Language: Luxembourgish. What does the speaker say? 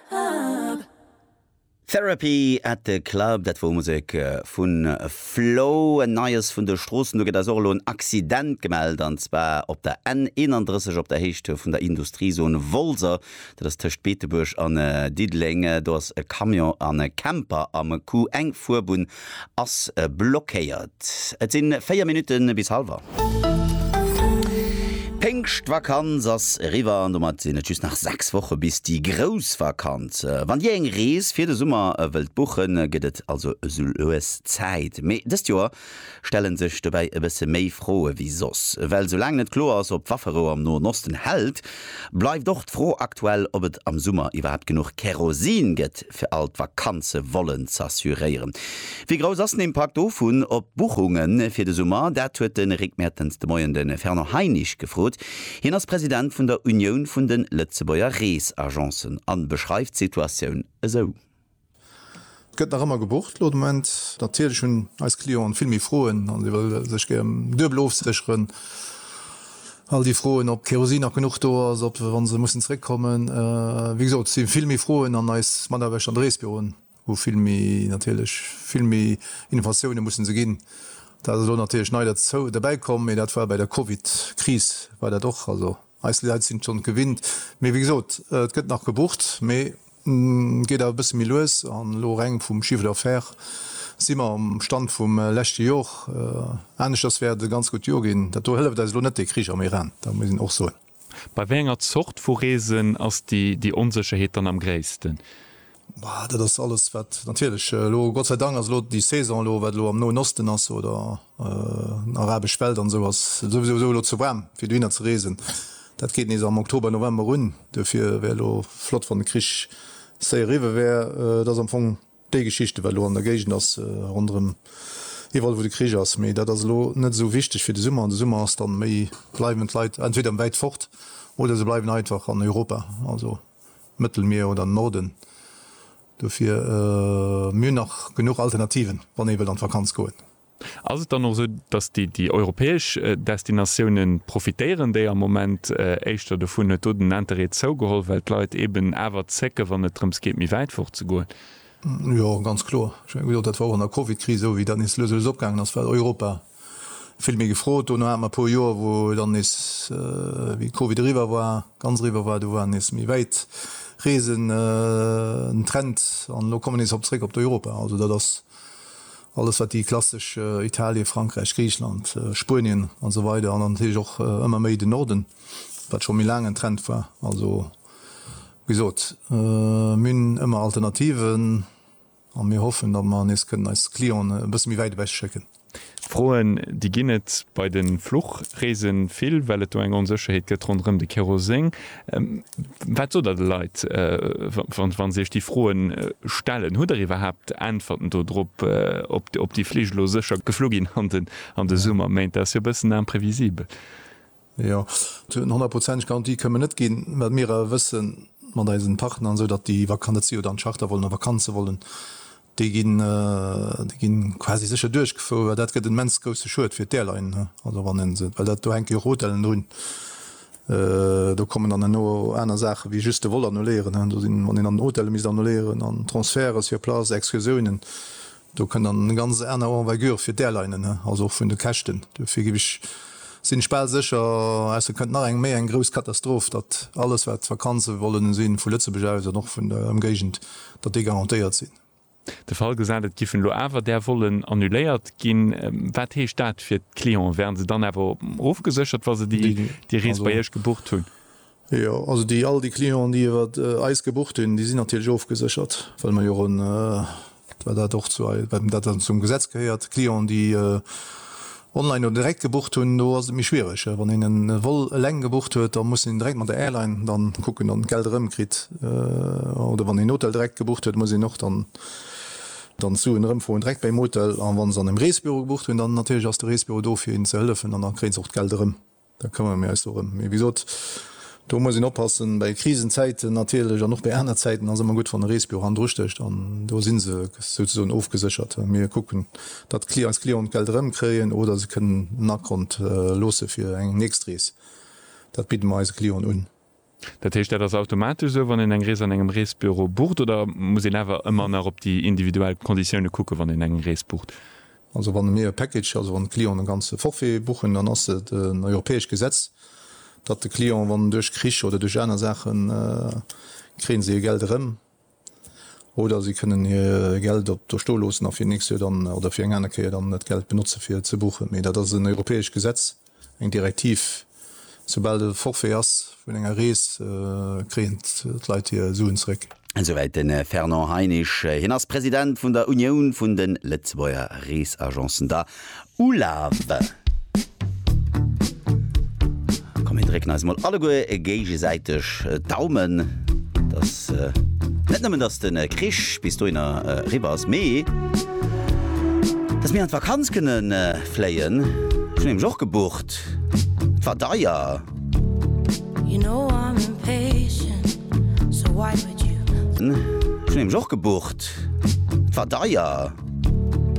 Club. Therapy at the Club, dat wor Musek vu Flow. En Neies vun de Stroossen, do gëtt eis och elo en Accident gemellt, an zwar op der N 31 op der Héicht vun der Industriezone Wolser, dat ass tëscht Beetebuerg an Diddeleng. Do ass e Camion an e Camper am Coup, eng Fuerbunn Ass blockéiert. Et sin 4 Minuten bis halwer. D'Péngschtvakanz ass eriwwer an domat sinn et just nach 6 Woche bis déi grouss Vakanz. Wann dir eng Rees fir de Summer wëllt buchen, gëtt et also esou lues Zäit. Mee dëst Joer stellen sech dobäi e bësse méi Froe wéi soss. Well sou laang net kloer ass, ob d'Wafferou am Noen Osten hält, bleift och d'Fro aktuell, ob et am Summer iwwerhaapt genuch Kerosin gëtt. fir all d'Vakanze wollen z'assuréieren. Wéi grouss ass den Impakt dovun op d'Buchunge fir de Summer? Dat huet de Rick Mertens de Moien de Fernand Heinisch gefrot. Hien ass President vun der Unioun vun de Lëtzebuerger Reesagencen a beschreift d'Situatioun esou. Et gëtt nach ëmmer gebucht elo de Moment. Natierlech hunn eis Clienten vill méi Froen a si wëlle sech gär duebel ofsécheren. All déi Froen, ob Kerosin nach genuch do ass, ob se, wa se mussen zeréckkommen, wéi gesot, si vill méi Froen an eis Mataarbechter an de Reesbüroen hu vill méi, natierlech vill méi Innovatiounen mussen se ginn. Dat ass elo natierlech nei derzou, derbäikomm, mee dat war bei der Covid-Kris war dat och. Also eis Leit sinn et schonn gewinnt. Mee wéi gesot, et gëtt nach gebucht, mee Geet awer e bësse méi lues an elo reng vum Chiffre d'affaires si mer um Stand vum leschte Jor. Aneschters wäert et e ganz gutt Jor ginn. Dat do hëlleft eis elo net dee Krich am Iran, dat muss een och soen. Bei wéi enger Zort vu Reesen ass déi Onsécherheet dann am gréissten? Dat ass alles wat natierlech elo, Gott sei Dank ass elo déi Saison elo, wat elo am Noen Osten ass oder Arabesch Welt an esou ass et souwisou esou elo ze waarm fir dohinner ze reesen. Dat geet nees am Oktober, November un. Duerfir wär elo flott wann de Krich séier eriwwe wär. Et ass am Fong déi Geschichte wat elo an der Géigend ass ronderëm iwwerall wou de Krich ass. Mee dat ass elo net esou wichteg fir de Summer an de Summer ass dann méi, bleiwen d'Leit entweder wäit fort oder se bleiwen einfach an Europa, also Mëttelmier oder Norden Dofir, mir hunn nach genuch Alternativen, wann ee wëllt an d'Vakanz goen. Ass et dann och esou, datt déi europäesch Destinatioune profitéieren, déi am Moment éischter dovun, huet do den Interêt zougeholl, well d'Leit eeben awer zécken, wann et drëms geet, méi wäit fort ze goen? Jo, ganz kloer. Ech menge gesot, dat war och an der Covid-Kris esou, wéi dat nees lues a lues opgaangen ass, well Europa, Vill méi gefrot. Dono hate mer e puer Joer, wou dann nees, wéi Covid eriwwer war, ganz eriwwer war, do war nees méi wäit Reesen den Trend. An elo komme mer nees op zréck op d'Europa. Also dat ass alles, wat déi klassesch Italien, Frankräich, Griichland, Spuenien an esou weider, an dann natierlech och ëmmer méi den Norden, wat scho méi laang en Trend war. Also wéi gesot, mir hunn ëmmer Alternativen. A mir hoffen, datt mer nees kënnen eis Clienten e bësse méi wäit ewech schécken. Froen, déi ginn et bei de Fluchreese vill, well et do eng Onsécherheet gëtt ronderëm de Keroseng. Wat sot Der de Leit, wa se Iech déi Froe stellen? Hutt Der iwwerhaapt Äntwerten do drop, ob déi Flich elo sécher geflu ginn an de Summerméint? Dat ass jo e bëssen imprévisible. Jo, eng honnertprozenteg Garantie kënnen mer net ginn. Wat mir awer wëssen mat eisen Partner an esou, datt déi Vakantie oder an Charter wollen a Vakanze wollen, déi ginn, déi ginn quasi sécher duerchgefouer, well dat gëtt en immens grousse Schued fir d'Airline. Also wann een se, well dat do hänke jo och Hotellen drun, do kommen dann herno aner Saachen wéi just de Vol annuléieren. Do sinn, wann een dann d'Hotelle misst annuléieren an Transferte sur place, Excursiounen, Do kënnt dann eng ganz aner Envergure fir d'Airlinen, also och vun de Käschten. Dofir ginn ech, sinn ech bal sécher, ausser et kënnt nach eng méi eng grouss Katastroph, datt alles wat Vakanze wollen sinn, vu Lëtzebuerg aus an och vun der Ëmgéigend, datt déi garantéiert sinn. De Fall gesat, et giffen elo awer där Vollen annuléiert ginn, wat heescht dat fir d'Clienten? Wären se dann awer ofgeséchert, wa se déi Rees bei Iech gebucht hunn? Jo, also déi all déi Clienten, déi iwwer eis gebucht hunn, déi sinn natierlech ofgeséchert, well mer jo en, well dat och zu ei, well dat dann zum Gesetz gehéiert, Clienten, déi online oder direkt gebucht hunn, do ass et méi schwierig. Wann een en Vol eleng gebucht huet, da muss een direkt mat der Airline dann kucken, dann d'Geld erëmkritt. Oder wann een Hotel direkt gebucht huet, muss een och dann dann d'Suen erëmfroen direkt beim Hotel. An wann se an engem Reesebüro gebucht hunn, dann natierlech ass de Reesebüro do fir hinnen ze hëllefen an da kréien se och d'Geld erëm. Da këmmere mir eis dorëm. Mee wéi gesot, do muss een oppassen. Bei Krisenzäiten natierlech an och bei aner Zäiten ass ëmmer gutt, wann e Reesbüro handdrustécht. An do si se souzesoen ofgeséchert. Mir kucken, datt eis Clienten d'Geld erëmkréien oder se kënnen en Akont loosse fir eng nächst Rees. Dat bidde mer eise Clienten un. Dat heescht, dat ass automatesch esou, wann een eng Rees an engem Reesbüro bucht, oder muss een awer ëmmer nach op déi individuell Konditioune kucken, wann een eng Rees bucht? Also wann mir e Package, also wann de Client e ganze Forfait buchen, dann ass et en europäescht Gesetz, datt de Client, wann duerch Krich oder duerch aner Saachen, kréie si hir Geld erëm. Oder si kënnen hir Geld op do sto loossen a fir nächst Joer dann, oder fir eng aner Kéier dann, dat Geld benotze fir ze buchen. Mee dat ass en europäescht Gesetz, eng Direktiv. Soubal e Forfait ass vun enger Rees, kréien d'Leit hir Suen zeréck. Esouwäit de Fernand Heinisch. Hien ass President vun der Unioun vun de Lëtzebuerger Reesagencen, der Ulaw. Komm mir drécken eis emol alleguer géigesäiteg d'Daumen, dass net nëmmen dass de Krich bis dohinner eriwwer ass, mee dass mir an d'Vakanz kënne fléien. Ech hunn nämlech och gebucht, et war deier. Ech hunn nämlech och gebucht, et war deier.